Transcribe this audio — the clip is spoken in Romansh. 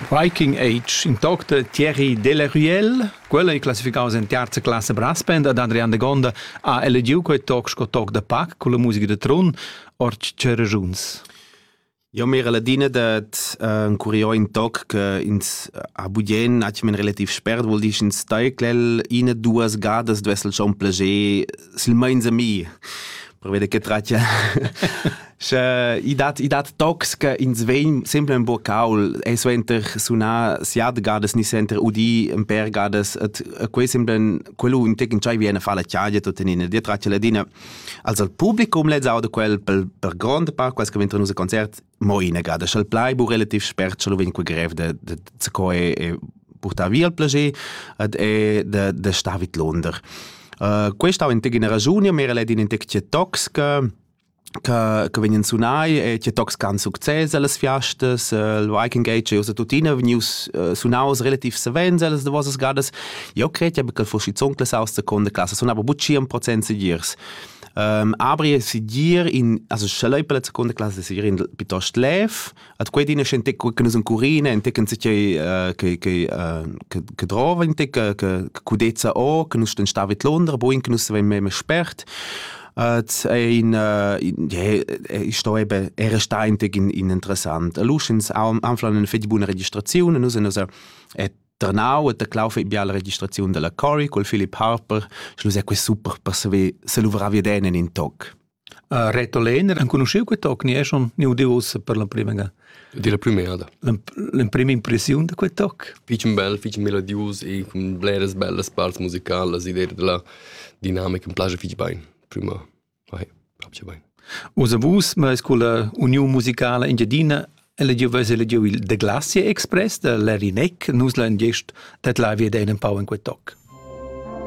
Viking Age, in toc da Thierry Delaruelle, quella è classificaus en terza classe brass band ad Adrian de Gonda ha elegiu quei toc sco toc da pac con la musica de Trun, ord tschera giuns. Eu m'era ladina dad encurier ün toc che ins ha bugien atgnamen relativ spert, vuol dir ch'ins taigl'el iina duas gadas duess el schon plager silmeins a mi, pervei da che tratgia Sche i dat i dat tocs che ins vegn sempre ün po caul e suenter sunar siat gadas ni suenter udir ün pêr gadas, et quei sembla quello ün tec entscheivi a far la chagia tuttenina. Dir tratgia ladina Also il publicum lez auda quel per, per grond part quels che ventan nus a concert mo inagada, sch'el plai bu relativ spert, sch'el vegn quel grev de de de co e, e portar via il plager ed e de de star vid Londra. Uh, questa ha in tegina ragione, ma era in tec toxica che, che vegnan sunai e che tocs can success alles fiastas, il Viking Age e usa tuttina vegnius uh, sunaus relativ savens alles de vossas gadas Eu cret eir che fo schizunt las autras seconda classa sunava buc 100% segirs. Um, abri segir in also schelei per la seconda classe segir in piuttost lev at quei dina scente che nus in curina in tecken sich che che che drova in te che cudezza o che nus sten stavit Londra bo in nus seven meme spert at ein ich sto eben er sta in teg in interessant luschens am anflan in fetg buna registrazione nus nus et ternau e teclau fei bia la registraziun della Cory col Philip Harper, sche lu sei quei super per saver se luvrar veden en in toc. Uh, Reto Lehner, enconosceu quei toc, ni è schon ni udiusa per la prima ga? Di la prima da. La prima impressione da quei toc? Fich bel, fich melodius e con bleras bellas parts musicalas, idea della dinamica mi piace fich bene, prima. Osa vus meis culla Uniun musicala Engiadina elegiu veis elegiu il The Glacier Express da Larry Neck, nus la ingest dat la via da in pau in quei toc.